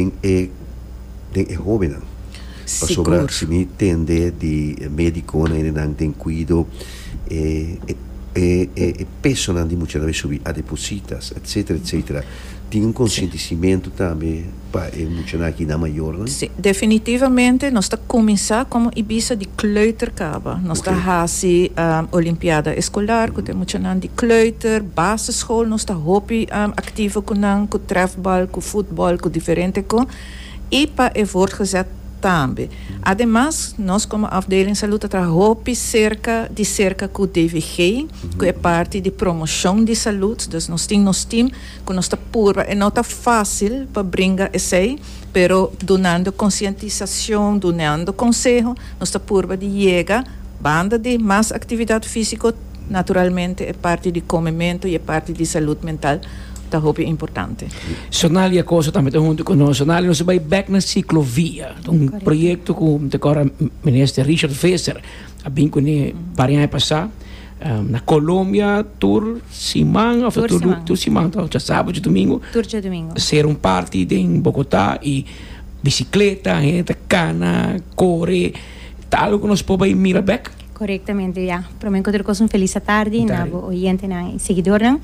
Den e den e hobennan. Pasobra si mi tende di e mediconan y nan den cuido e e e e pesonan di muchanan mi subi a depositas etcetera etcetera tin un conscientiscimento tambe pa e muchanan aki nan mayornan? Si, definitivamente nos ta cuminsa como Ibiza di kleuterka. Nos ta hasi olimpiada escolar cu ta e muchanan di kleuter, basisschool. Nos ta hopi activo cu nan, cu trefbal, cu futbal, cu diferente co. Y pa e voortgezet tambe. Ademas, nos como afdeling salud ta traha hopi cerca, di cerca cu DVG, cu e parti di promocion di salud. Dus nos tin nos team cu nos ta purba. E no ta facil pa bringa esey, pero dunando concientisacion, dunando conseho, nos ta purba di yega. Banda di mas actividad fisico, naturalmente e parti di comemento y e parti di salud mental ta hopi importante. Sonalia Acosta tambe ta hunto cu nos. Sonalia, nos a bay bek na ciclovia. Ta un proyecto cu ta core Minister Richard Visser a bin cune par di aña pasa. Na Colombia tur siman of tur siman ta oca sabado domingo tur dje domingo ta ser un party den Bogota y bicicleta hende ta cana core ta algo cu nos por bay mira bek. Correctamente ya prome cu tur cos un feliz atardi na bo oyentenan y seguidornan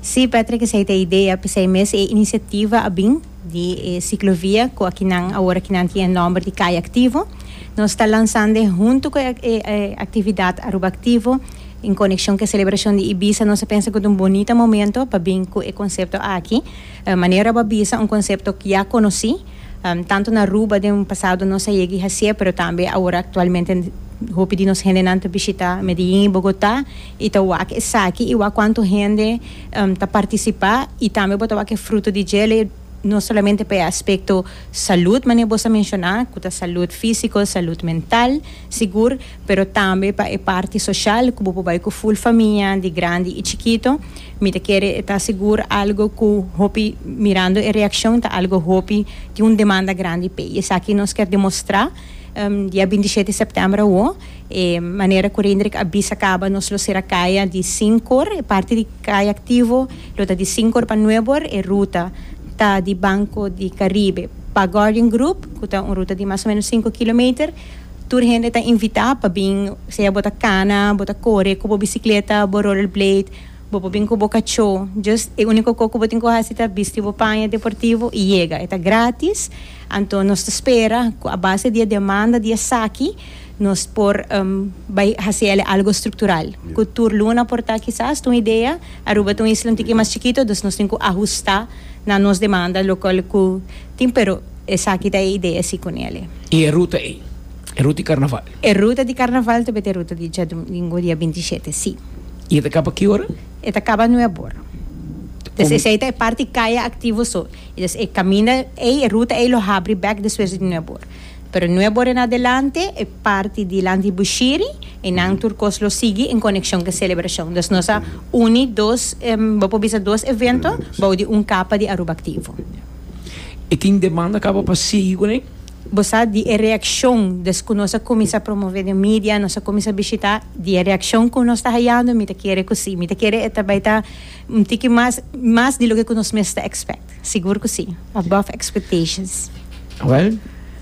si Patrick esey ta idea pesey mes e iniciativa a bin. di e ciclovia cu aki nan awor aki nan tin e nomber di Calle Activo. Nos ta lanzando e hunto cu e actividad Aruba Activo en conexion cu e celebracion di Ibiza. Nos a pensa cu ta un bonita momento pa bin cu e concepto aki. Manera bo a bisa un concepto ya conoci tanto na Aruba den pasado nos a yega y haci'e pero tambe awor actualmente hopi di nos hendenan ta bishita Medellin y Bogota y ta wak esaki y wak cuanto hende. ta participa y tambe bo ta wak e fruto di djele no solamente pa e aspecto salud manera boso a menciona cu ta salud fisico salud mental sigur pero tambe pa e parti social cu bo por bay cu full famia di grandi y chikito mi ta kere e ta sigur algo cu hopi mirando e reaccion ta algo hopi tin un demanda grandi p'e y esaki nos kier demostra dia binti shete september awo. E manera cu Reindrik a bisa caba nos lo cera caya di Sincor, e parti di Caya Activo lo ta di Sincor pa Nuebor, e ruta ta di Banco di Caribe pa Guardian Group cu ta un ruta di mas o menos sinku kilometer. Tur hende ta invita pa bin, sea bo ta cana, bo ta core cu bo bicicleta, bo rollerblade, Bo por bin cu bo cacho. Just e unico co cu bo tin cu haci ta bisti bo paña deportivo y yega. E ta gratis. Anto nos ta spera cu a base di e demanda di esaki nos por bay haci el e algo structural. Cu tur luna por ta kisas, ta un idea. Aruba ta un isla un tiki mas chikito, dus nos tin cu ahusta na nos demanda local cu tin, pero esaki ta e idea si cu Nele. Y e ruta ey? E ruta di Carnaval? E ruta di Carnaval ta beta e ruta di djadomingo, dia binti i shete, si. I e ta kaba ki ora? E ta kaba nuebora. Des esei ta e parti kaya aktivo so. I des e kaminda ei, e ruta ei lo habri bèk despues di nuebora. Pero nuebora en adelante e parti di lanti Bushiri i nan tur kos lo sigui en konekshon ku e selebrashon. Dus nos a uni dos, bo por bisa dos evento bou di un kapa di Aruba Aktivo. E tin demanda kaba pa sigui kuné? Bo sa di e reaccion descu nos a cuminsa promove den media, nos a cuminsa bishita, di e reaccion cu nos ta hayando, mi ta kere cu si. Mi ta kere e ta bay ta un tiki mas, mas di loke cu nos mes ta expect. Sigur cu si. Above expectations. Well,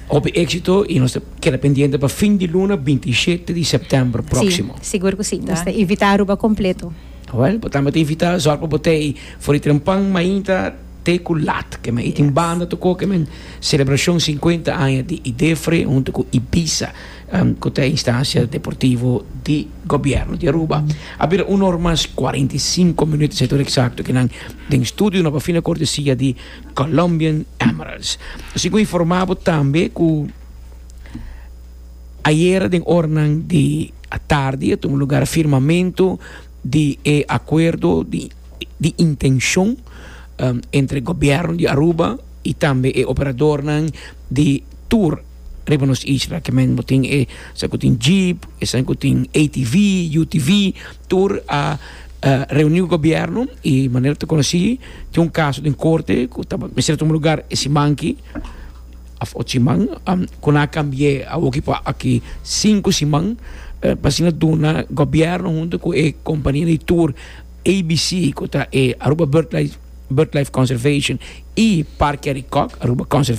hopi exito y nos ta keda pendiente pa fin di luna binti i shete di september proximo. Si, sigur cu si. Nos ta invita Aruba completo. Well, bo tambe ta invita, zorg pa bo ta ey for di tren pan mainta. te ku lat. Ke men i tin banda tokó ke men selebrashon sinkuenta aña di Idefre huntu ku Ibiza ku ta e instansia deportivo di gobièrnu di Aruba. A bira un or mas kuarenta i sinku minüt, esei tur eksakto ke nan den studio no a bafina kortesia di Colombian Emeralds. Así ku informá bo tambe ku ayera den ornan di atardi a tuma lugar firmamentu di e akuerdo di. di intenshon entre gobièrnu di Aruba i tambe e operadornan di tur riba nos isla. Ke men bo tin esei ku tin jeep, esei ku tin ATV, UTV, tur a reuni ku gobièrnu i manera ta konosí tin un kaso den korte ku ta mester tuma lugar e siman ki òf otu siman ku nan a kambi'é awoki pa aki sinku siman pa asina duna gobièrnu huntu ku e kompania di tur. ABC, ku ta e Aruba Birdlife Conservation i Parke Arikok, Aruba Conservation.